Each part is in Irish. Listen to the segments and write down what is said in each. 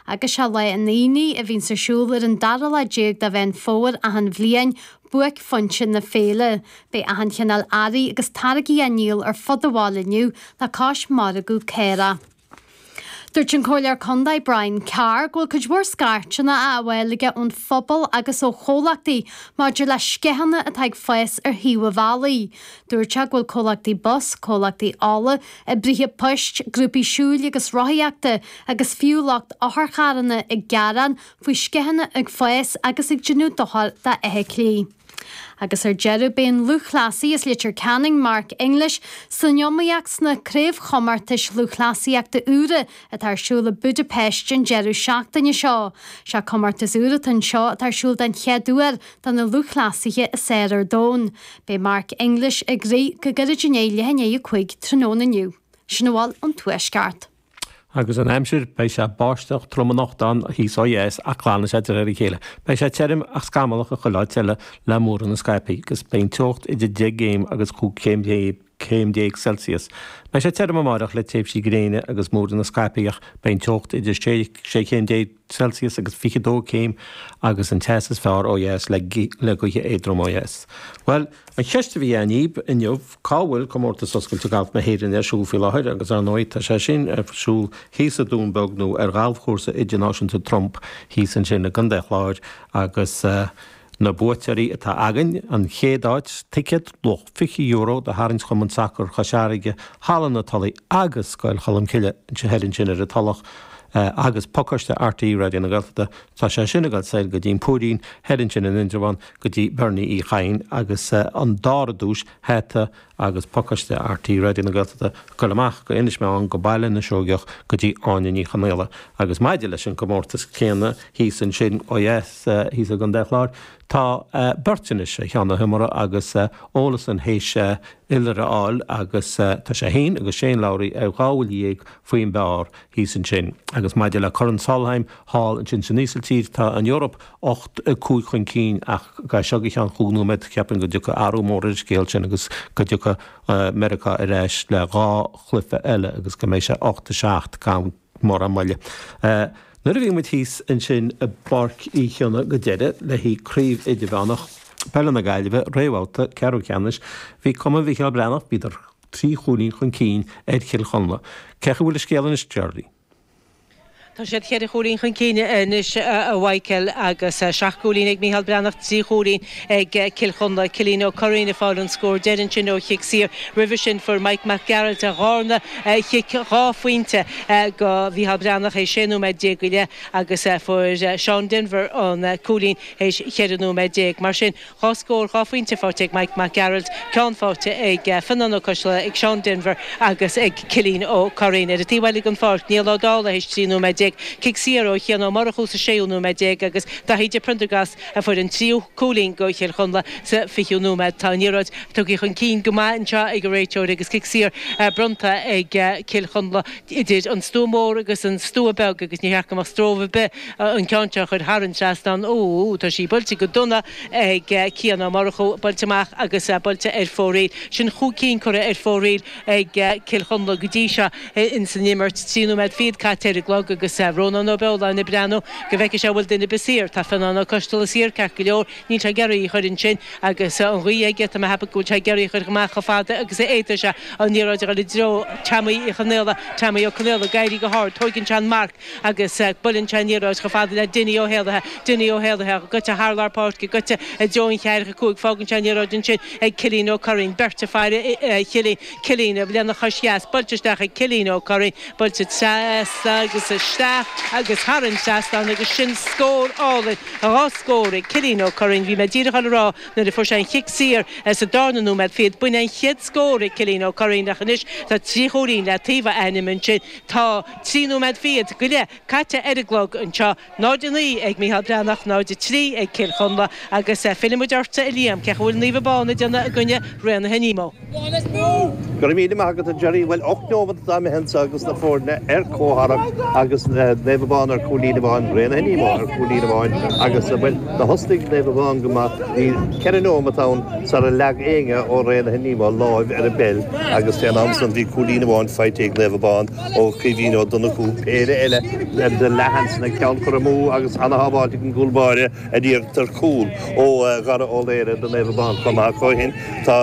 agus sé Lá an Aonaigh a bhíonns ar siúl ar an dara lá déag de Mheán Fómhair achan bhliain, buaicphointe na féile. Beidh achan chineál earraí agus táirgí á ndíol ar fud an bhaile inniu le cois margadh caorach. Dúirt an Comhairleoir Contae Brian Carr go bhfuil cuid mhór scairteanna á fháil aige ón phobal agus ó chomhlachtaí maidir le sceitheanna atá ag fás ar thaobh an bhealaigh. Dúirt sé go bhfuil comhlachtaí bus, comhlachtaí ola, oibrithe poist, grúpaí siúil agus rothaíochta agus fiú lucht otharcharranna ag gearán faoi sceitheanna ag fás agus ag déanamh dochair do fheithiclí. Agus ar deireadh, beidh an lúthchleasaí as Leitir Ceanainn, Mark English, san iomaíocht sna Craobhchomórtais Lúthchleasaíochta úra atá ar siúl i Budapest an deireadh seachtaine seo. Sé comórtas úr atá anseo atá ar siúl den chéad uair do na lúthchleasaithe is fhearr ar domhan. Beidh Mark English ag rith go gairid i ndiaidh leath i ndiaidh a cúig tráthnóna inniu. Sin a bhfuil ón Tuaisceart. Agus an aimsir, beidh sé báisteach trom anocht ann thíos ó dheas ach glanfaidh sé de réir a chéile. Beidh sé tirim ach scamallach i chuile áit eile le múranna scaipthe agus beidh an teocht idir deich gcéim agus cúig chéim déag. céim déag Celsius. Beidh sé tirim amárach le tréimhsí gréine agus múranna scaipthe. Beidh an teocht idir sé chéim déag Celsius agus fiche dó céim agus an teas is fearr ó dheas le gaoithe éadrom ó dheas. Bhuel, an cheist a bhí againn daoibh inniu, cá bhfuil Comórtas Oscailte Gailf na hÉireann ar siúl faoi láthair agus ar ndóigh tá sé sin ar siúl thíos sa Dún Beag nó ar Ghalfchúrsa Idirnáisiúnta Trump thíos ansin i gContae an Chláir agus Na buaiteoirí atá againn, An chéad áit, Ticéad luach €20 do tharraingt Chumann Sacar Chois Fharraige, Halla na Tulaí agus Scoil Cholmcille, thoir ansin ar an Tulach, agus Pacáiste RTÉ Raidió na Gaeltachta, tá sé sin ag dul soir go dtí an Púirín, thoir ansin in Indreabhán go dtí Bernie Uí Chadhain agus an dara duais, Hata agus pacáiste RTÉ Raidió na Gaeltachta á chur amach go Inis Meáin, go Baile na Seoigeach, go dtí Áine Ní Chonaola. Agus maidir leis an gcomórtas céanna thíos ansin, ó dheas, thíos i gContae an Chláir, tá beirt anois ar cheann na himeartha agus Olesen théis iolar a fháil agus tá sé fhéin agus Shane Lowry ar dhá bhuille dhéag faoin bpár thíos ansin. Agus maidir le Corn Solheim thall ansin san Ísiltír, tá an Eoraip, 8, 5 chun cinn ach as seo go ceann cúig nóiméad, cheapfainn go dtiocfaidh athrú mór ar an scéal sin agus go dtiocfaidh Meiriceá ar ais le dhá chluiche eile agus go mbeidh sé 8, 7 gan mórán moille. Nuair a bhí muid thíos ansin i bPáirc Uí Chionnaith go deireadh le haghaidh Craobh Idirmheánach Peile na Gaillimhe, réamhbhabhta ceathrú ceannais, bhí Cumann Mhícheál Breathnach, bhíodar trí chúilín chun cinn ar Chill Chonla. Cén chaoi a bhfuil an scéal anois, Geraldine? Tá siad ceithre chúilín chun cinn anois a Mhichíl agus seacht gcúilín ag Micheál Breathnach, trí chúilín ag Cill Chonla. Cillín Ó Curraoin ag fáil an scór deiridh ansin ó chic saor. Roimhe sin fuair Mike Mac Gearailt a dharna chic dhá phointe go Mhicheál Breathnach théis 16 nóiméad go leith agus fuair Seán Denvir an cúilín théis cheithre nóiméad déag. Mar sin. 2 scór 2 phointe faighte ag Mike Mac Gearailt, ceann faighte ag Fionán Ó Coistealbha, ag Seán Denvir agus ag Cillín Ó Curraoin. Ar an taobh eile den pháirc, Niall Ó Dálaigh théis 13 nóiméad, cic saor ó Chian Ó Murchú sa séú nóiméad déag agus Daithí de Priondargast a fuair an tríú cúilín go Chill Chonla sa 20ú nóiméad. Tá an liathróid tugtha chun cinn go maith anseo ag an réiteoir agus cic saor bronnta ag Cill Chonla idir an stua mór agus an stua beag agus níor cheart go mbeadh stróbh ar bith an ceann seo a chur thar an trasnán. Úúú, tá sí buailte go dona ag Cian Ó Murchú, buailte amach agus buailte ar fóraoil. Sin chúig cinn curtha ar fóraoil ag Cill Chonla go dtí seo ins an imirt. Trí nóiméad fichead caite ar an gclog agus Rónán Ó Beoláin ag breathnú go bhfeice sé an bhfuil duine ar bith saor. Tá Fionán Ó Coisteala saor, ceart go leor. Níl sé ag iarraidh í chur ansin agus an ghaoth aige. Tá mé ag ceapadh go bhfuil sé ag iarraidh í chur amach chomh fada agus a fhéadfaidh sé. An liathróid a chur i dtreo Teaimí Uí Chonaola. Teaimí Ó Conaola ag éirí go hard. Tóigeann sé an marc. agus buaileann sé an liathróid chomh fada le Dinny Ó hÉalaithe, Dinny Ó hÉalaithe, goite thar lár páirce, goite i dtreo an cheathracha cúig, fágann sé an liathróid ansin ag Cillín Ó Curraoin, beirt ag faire Chillín, Cillín lena chois dheas, buailte isteach ag Cillín Ó Curraoin, buailte trasna agus isteach agus thar an trasnán agus sin scór álainn, dhá scór ag Cillín Ó Curraoin, bhí mé díreach á rá nuair a fuair sé an cic saor sa darna nóiméad fichead, b'in an chéad scór ag Cillín Ó Curraoin ach anois tá trí chúilín le taobh a ainm ansin, tá. Trí nóiméad fichead go leith caite ar an gclog anseo. 0, 9 ag Micheál Breathnach, 0, 3 ag Cill Chonla agus fillfidh muid ortsa a Liam, cén chaoi a bhfuil Naomh Abán ag déanamh i gcoinne Raonaithe Nemo. Go raibh míle maith agat a Gerry. Bhuel ocht nóimead atá imithe anseo agus na foirne ar comhtharrac agus Naomh Abán ar cúilín amháin, Raonaithe Nemo ar cúilín amháin agus bhuel thosnaigh Naomh Abán go maith. Bhí ceithre nóimead ann sara leag éinne ó Raonaithe Nemo láimh ar an bpeil agus fén am san bhí cúilín amháin faighte ag Naomh Abán. Ó Caoimhín Ó Donnchú, péire eile de leathsheansanna ceann curtha amú agus ceann sábháilte ag an gcúl báire an iarracht ar chúl ó Dhara Ó Laoire do Naomh Abán chomh maith. Ach ó shin tá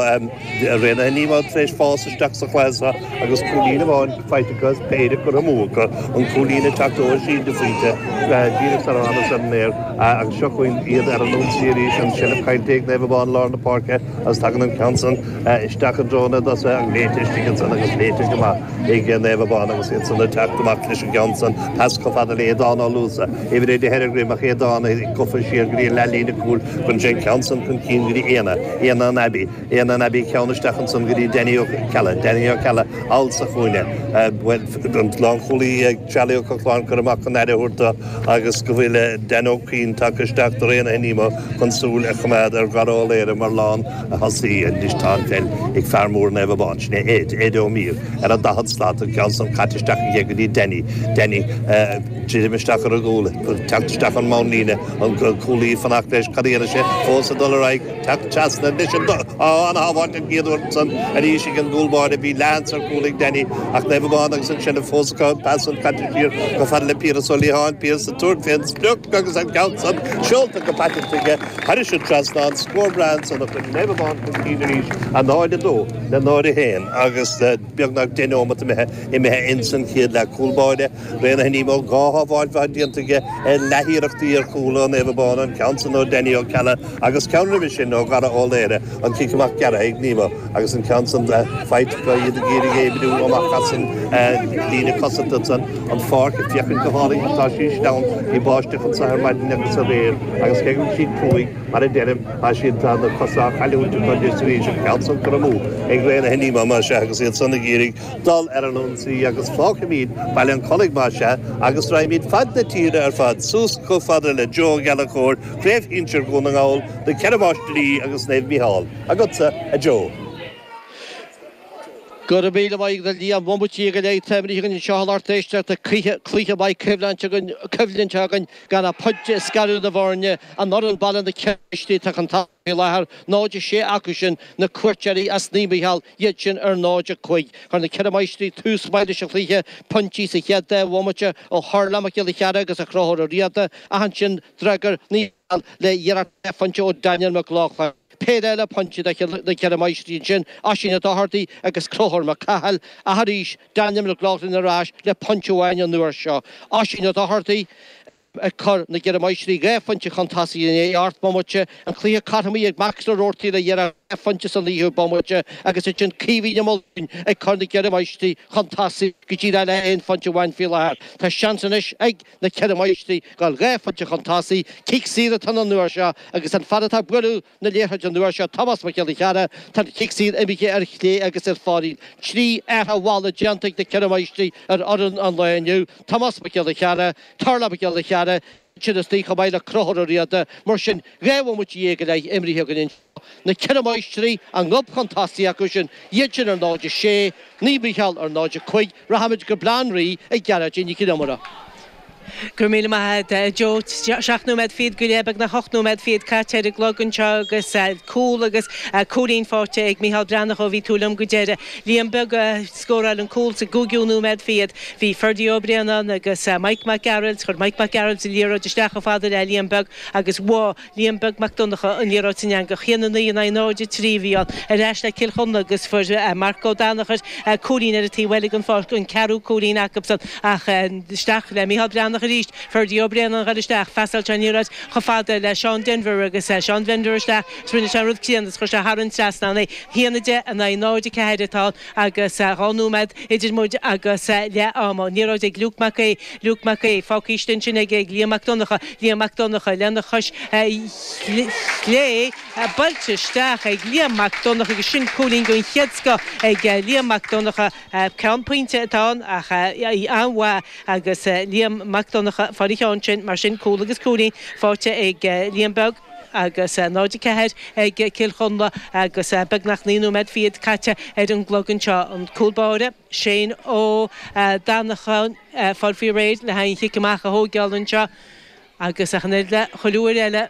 Raonaithe Nemo tar éis fás isteach sa chluiche seo agus cúilín amháin faighte acu as péire curtha amú acu, an cúilín ag teacht ó Oisín de Faoite díreach sarar thánamar ar an aer agus seo chugainn iad ar an ionsaí arís, an seilbh caillte ag Naomh Abán lár na páirce agus tagann an ceann san isteach i dtreo na dtosach, léite istigh ansan agus léite go maith. ag Naomh Abán agus iad san ag teacht amach leis an gceann san pas chomh fada le hAodhán Ó Luasa, uimhir a deich ar a dhroim ach Aodhán gofa siar go dtí an leath-líne cúil cuireann sé an ceann san chun cinn go dtí Éanna, Éanna an Abbey, Éanna an Abbey ceann isteach ansan go dtí Danny Ó Ceallaigh, Danny Ó Ceallaigh thall sa chúinne, bhuel an lánchúlaí, Charlie Ó Cochláin curtha amach chun aire a thabhairt do agus go bhfuil Dan Ó Cuinn tagtha isteach do Raonaithe Nemo chun súil a choimeád ar Dhara Ó Laoire mar lántosaí anois tá an pheil ag fear mór Naomh Abán, sin é Ed, Ed Ó Mír ar an daichead slat an ceann san caite isteach aige go dtí Danny, Danny ag druidim isteach ar an gcúl ag teacht isteach ón mbonnlíne an cúlaí ag fanacht leis cad a dhéanfaidh sé fós ag dul ar aghaidh. Teacht Trasna anois ana-shábháilt den chéad uair ansan arís ag an gcúl báire. Bhí leathshans ar chúl ag Danny ach Naomh Abán agus ansin an phóscadh, pas ón caidir siar go fada le Piaras Ó Liatháin, Piaras ag tabhairt fén sprioc agus an ceann san seolta go paiteanta aige thar an dtrasnán, scór breá ansan a chuir Naomh Abán chun cinn arís, 0-2 le 0-1 agus beagnach deich neomat imithe imithe insan chéad leath. Cúl báire. Raonaithe Nemo dhá shábháil mhaith déanta aige ar leath-iarrachtaí ar chúl ó Naomh Abán, an ceann san ó Danny Ó Ceallaigh agus ceann roimhe sin ó Dhara Ó Laoghaire, an cic amach gearrtha ag Nemo agus an ceann san faighte acu, iad ag iarraidh éigniú amach as an líne cosanta san an pháirc ag féachaint go hálainn ach tá sí sleamhain, bhí báisteach anso ar maidin agus aréir agus cé go bhfuil siad cruaidh, mar a deirim, tá siad, tá na cosa á gcailliúint acu anois arís, an ceann san curtha amú ag Raonaithe Nemo mar sin agus iad san ag iarraidh. dul ar an ionsaí agus fágfaimid Baile an Chollaigh más ea agus raghaimid fad na tíre ar fad suas chomh fada le Joe Ó Gallchóir, Craobh Shinsir Dhún na nGall, Na Ceithre Máistrí agus Naomh Micheál. Agatsa, a Joe. Go raibh míle maith agat, a Liam. Bhuel, bomaite déag go leith imrithe againn anseo in iardheisceart na críche, cluiche maith coimhlinte againn gan ach pointe ag scaradh na bhfoirne. An fhoireann baile, na Ceithre Máistrí, tá chun tosaigh faoi láthair, 0-6 acu sin na cuairteoirí as Naomh Micheál iad sin ar 0-5. Chuir na Ceithre Máistrí tús maith leis an chluiche pointí sa chéad dá bhomaite ó Tharlach Mac Giolla Chearra agus ó Chonchúr Ó Riada ach ansin d'fhreagair Naomh Micheál le hiarracht dhá phointe ó Daniel Mac Lochlainn. Péire eile pointí do na Ceithre Máistrí ansin, Oisín Ó Dochartaigh agus Conchúr Mac Cathail ach arís Daniel Mac Lochlainn ar ais le pointe amháin an uair seo, Oisín Ó Dochartaigh. ag cur na gceithre máistrí dhá phointe chun tosaigh in ocht mbomaite, an cluiche cothromaithe ag Max Roarty le hiarracht dhá phointe sa naoú bomaite agus ansin Caoimhín Ó Maoldúin ag cur na gceithre máistrí chun tosaigh go dtí leath le haon phointe amháin faoi láthair. Tá seans anois ag na ceithre máistrí dul dhá phointe chun tosaigh, cic saor atá ann an uair seo agus an fear atá ag bualadh na liathróide an uair seo, Tomás Mac Giolla Chearra, Tá an cic saor imithe ar chlé agus ar fóraoil. Trí athrú mhalla déanta ag na Ceithre Máistrí ar fhoireann an lae inniu, Tomás Mac Giolla Chearra, Tarlach Mac Giolla Chearra, iad sin isteach chomh maith le Conchúr Ó Riada. Mar sin, dhá bhomaite déag go leith imrithe againn anseo. Na Ceithre Máistrí a ngob chun tosaigh acu sin, iad sin ar 0, 6, Naomh Mícheál ar 0, 5, Rachaimid go Baile Átha an Rí chuig Gearóidín Nic an Iomaire. Go raibh míle maith agat, a Joe. Seacht nóiméad fichead go leith, beagnach ocht nóiméad fichead caite ar an gclog anseo agus cúl agus cúilín faighte ag Micheál Breathnach ó bhí tú liom go deireadh. Liam Beag a scóráil an cúl sa gcúigiú nóiméad fichead. Bhí Ferdie Ó Braonáin agus Mike Mac Gearailt, chuir Mike Mac Gearailt an liathróid isteach chomh fada le Liam Beag agus bhuail. Liam Beag Mac Donnacha, an liathróid san Eangach 1, 9 in aghaidh 0, 3 a bhí ann. Ar ais le Cill Chonla agus fuair Marc Ó Danachair cúilín ar an taobh eile den pháirc, an ceathrú cúilín acubsan ach isteach le Micheál Breathnach arís. Ferdia Ó Braonáin a dhul isteach, phasáil sé an liathróid chomh fada le Seán Denvir agus Seán Denvir isteach is rinne sé an rud críonna is chuir sé thar an trasnán é. 1, 10 in aghaidh 0, 4 atá ann. agus dhá nóiméad idir muid agus leath ama. An liathróid ag Luke Mac Aoidh. Luke Mac Aoidh, fágtha istigh ansin ag Liam Mac Donnacha. Liam Mac Donnacha, Lena chois chlé, buailte isteach ag Liam Mac Donnacha agus sin cúilín den chéad scoth ag Liam Mac Donnacha. Ceann pointe atá ann ach í an-mhaith agus Liam Mac Donnacha a fuair an ceann sin. Mar sin cúl agus cúilín faighte ag Liam Beag. agus 0, 4 ag Cill Chonla agus beagnach naoi nóiméad fichead caite ar an gclog anseo. An cúl báire, Shane Ó Dannacháin, fáil faoi réir le haghaidh an chic amach a thóigeáil anseo agus ach an oiread le chuile uair eile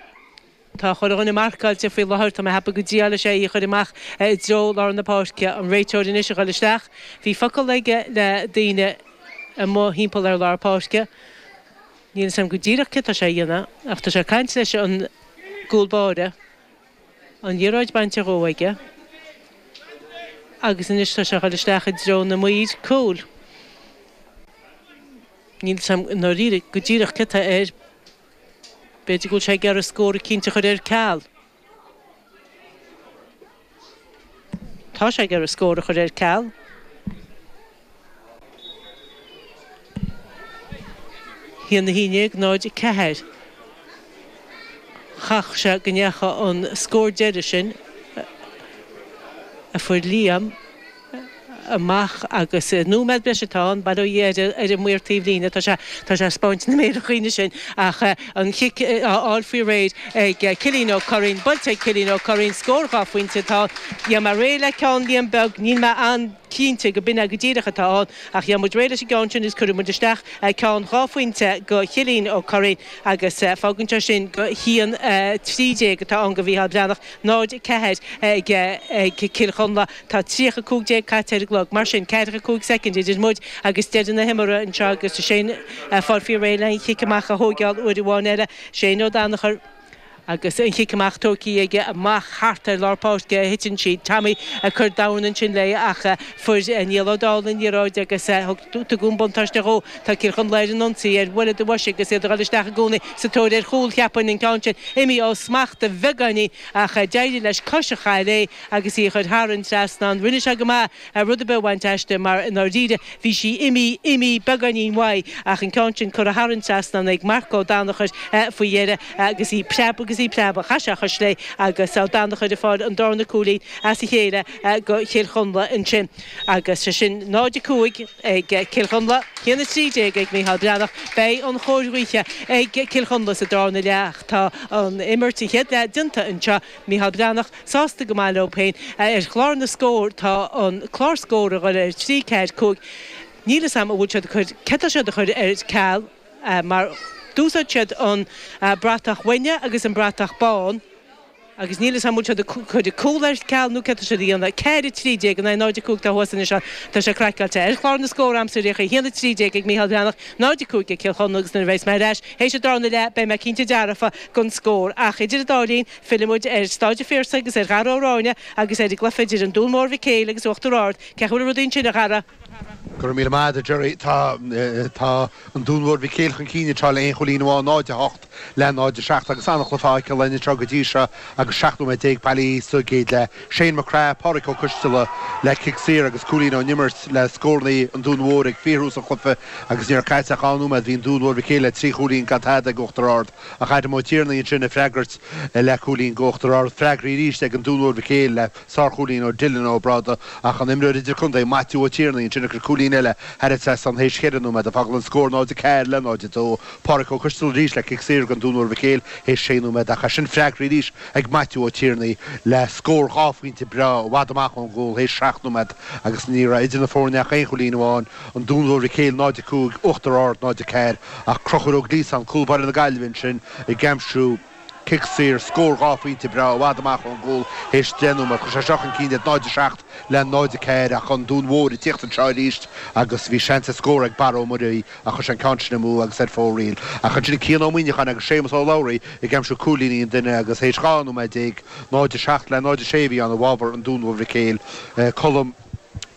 tá chuile dhuine marcáilte faoi láthair. Tá mé a cheapadh go dtriálfaidh sé é a chur amach i dtreo lár na páirce. An réiteoir anois a dhul isteach. Bhí focal aige le daoine amuigh timpeall ar lár páirce. Níl 'fhios a'm go díreach céard tá sé a dhéanamh ach tá sé ag caint leis an gcúl báire, an liathróid bainte dhó aige agus anois tá sé a dhul isteach i dtreo na maoir cúil. Níl 'fhios a'm i ndáiríre go díreach céard tá air, b'fhéidir go bhfuil sé ag iarraidh scór eicínt a chur ar ceal. Tá sé ag iarraidh scór a chur ar ceal. 1-11, 0-4. Caithfidh sé go ndeacha an scór deiridh sin a fuair Liam. amach agus nóiméad breise atá ann, ag breathnú ar an maor taobh líne, tá sé tá sé spáint na méire dhúinn ansin ach an chic á fháil faoi réir ag Cillín Ó Curraoin, buailte ag Cillín Ó Curraoin, scór dhá phointe atá ann, dhéan mé réidh le ceann Liam Beag, níl mé an-chinnte go b'in é go díreach atá ann ach dhéan muid réidh leis an gceann sin agus cuirfidh muid isteach ceann dhá phointe go Chillín Ó Curraoin agus fágann sé sin go haon trí déag atá ann go Mhícheál Breathnach, 0, 4 ag Cill Chonla. Tá tríocha cúig déag caite ar an gclog, mar sin, ceathracha cúig soicind idir muid agus deireadh na himeartha anseo agus is é an fear faoi réir le an chic amach a thóigeáil uair amháin eile. Shane Ó Danachair agus an chic amach tógtha aige amach thart ar lár páirce a thiteann sí. Tommy ag cur dorn ansin léi ach fuair Niall Ó Dálaigh an liathróid agus tugadh an buntáiste dhó. Tá Cill Chonla ar an ionsaí ar bhuille do bhoise agus iad ag dul isteach i gcónaí sa tóir ar chúl. Cheapfainn an ceann sin imithe ó smacht beagáinín ach d'éirigh leis cois a chaitheamh léi. agus í a chuir thar an trasnán. Rinne sé go maith ar rud ar bith a bhaint aisti mar, i ndáiríre, bhí sí imithe, imithe beagáinín uaidh ach an ceann sin curtha thar an trasnán ag Marc Ó Danachair faoi dheireadh agus í ag preabadh agus í ag preabadh. Chaith sé a chois léi agus Ó Danachair ag fáil an darna cúilín as a chéile go Chill Chonla ansin agus sé sin 0-5 ag Cill Chonla, 1-13 ag Mícheál Breathnach. Beidh an chóir ghaoithe ag Cill Chonla sa darna leath ach tá an imirt sa chéad leath déanta anseo. Mícheál Breathnach, sásta go maith leo féin. Ar chlár na scór, tá an clár scór a ghoil ar thrí, ceathair, cúig, níl 'fhios a'm an bhfuil siad ag cur, céard tá siad ag cur ar ceal mar d'úsáid siad an bratach uaine agus an bratach bán agus níl 'fhios a'm an bhfuil siad ag cur an cúl ar ceal nó céard tá siad a dhéanamh. Ceathair, a trí déag, an é, náid, a cúig, atá thuas anois ann, tá sé craiceáilte. Ar chlár na scór, a'msa ar aon chaoi, a haon, a trí déag ag Mícheál Breathnach, 0, 5 ag Cill Chonla agus nuair a bheidhas mé ar ais théis an darna leath beidh mé cinnte dearfa den scór. Ach idir an dá linn fillfidh muid ar Stáid an Phiarsaigh agus ar Dhara Ó Ráinne agus ar an gcluiche idir an Dún Mór Mhic Éil agus Uachtar Ard. Cén chaoi a bhfuil rudaí ansin, a Dhara? Go raibh míle maith agat, a Gerry. Tá an Dún Mhór Mhic Éil chun cinn, tá, le aon chúilín amháin, 0, 8, Le 0 7 agus an-chluiche faighte linn anseo go dtí seo agus 17 nóiméad bailithe sa gcéad leath. Shane Mac Craith, Pádraic Ó Coistealla le cic saor agus cúilín ón imirt le scórannaí an Dún Mhóir ag fíorthús an chluiche agus ní raibh caite ach dhá nóiméad bhí an Dún Mhór Mhic Éil le trí chúilín gan tada ag Uachtar Ard ach Adam Ó Tiarnaigh ansin ag freagairt le cúilín go Uachtar Ard. Freagraí arís ag an Dún Mhór Mhic Éil le sárchúilín ó Dylan Ó Bráda ach an imreoir idirchontae Maitiú Ó Tiarnaigh ansin ag cur cúilín eile thar an trasnán théis cheithre nóiméad ag fágáil an scór 0 4 le 0 2. Pádraic Ó Coistealla arís le cic saor don Dún Mhór Mhic Éil théis sé nóiméad ach ansin freagraí arís ag Maitiú Ó Tiarnaigh le scór dhá phointe breá i bhfad amach ón gcúl théis seacht nóiméad agus ní raibh idir na foirne ach aon chúilín amháin, an Dún Mhór Mhic Éil 0-5 Uachtar Ard 0-4, ach Crochúr Ó Gliasáin, cúl báire na Gaillimhe ansin, ag aimsiú. Cic saor, Scór dhá phointe breá i bhfad amach ón gcúl théis deich nóiméad. Chuir sé seo chun cinn iad 0-7 le 0-4 ach An Dún Mhór ag tíocht anseo arís agus bhí seans ar scór ag Barra Ó Muirí ach chuir sé an ceann sin amú agus ar fóraoil. Ach ansin Cian Ó Muíneacháin agus Séamus Ó Labhraí ag aimsiú cúilíní an duine agus théis 12 nóiméad, 0-7 le 0-6 a bhí ann i bhfabhar An Dún Mhór Mhic Éil Colm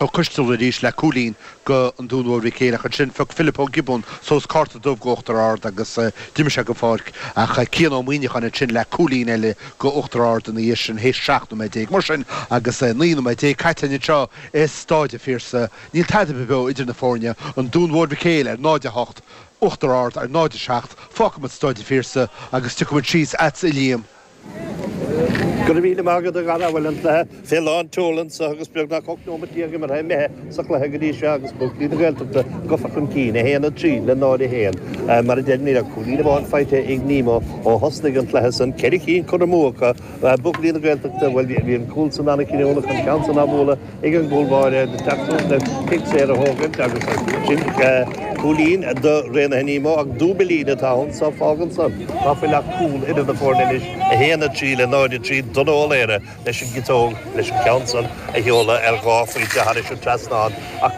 Ó Coistealbha arís le cúilín go An Dún Mhór Mhic Éil ach ansin, phioc Philip Ó Giobúin suas cárta dubh go Uachtar Ard agus d'imigh sé gon pháirc ach Cian Ó Muíneacháin ansin le cúilín eile go Uachtar Ard ina dhiaidh sin théis 17 nóiméad. Mar sin, agus 19 nóiméad caite linn anseo i Stáid a' Phiarsaigh, níl tada be beo idir na foirne, An Dún Mhór Mhic Éil ar 0, 8, Uachtar Ard ar 0, 7. Fágfaimid Stáid a' Phiarsaigh agus tiocfaimid síos a'tsa a Liam. Go raibh míle maith agat a Dhara bhuel an cluiche fé lán tseol anseo agus beagnach 18 nóimeat imeartha imithe sa chluiche go dtí seo agus buachaillí na Gaeltachta gofa chun cinn, 1-3 le 0-1. Mar a deir Mícheál, cúilín amháin faighte ag Nemo ó thosnaigh an cluiche san, ceithre chinn curtha amú acu, buachaillí na Gaeltachta, bhuel bhí an cúl san an-chinniúnach, an ceann san á bhualadh. ag an gcúlbáire ag teacht suas le cic saor a thógaint agus ansin cúilín do Raonaithe Nemo ach dúbailín atá ann so fágann san ná fuil ach cúl idir na foirne anois, 1-3 le 0-3 Donncha Ó Laoire leis an gciotóg leis an ceann san a sheoladh ar dhá phointe thairis an trasnán ach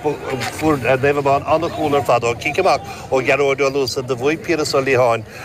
fuair Naomh Abán an-chúl ar fad ó chic amach ó Ghearóid Ó Luasa do bhuaigh Piaras Ó Liatháin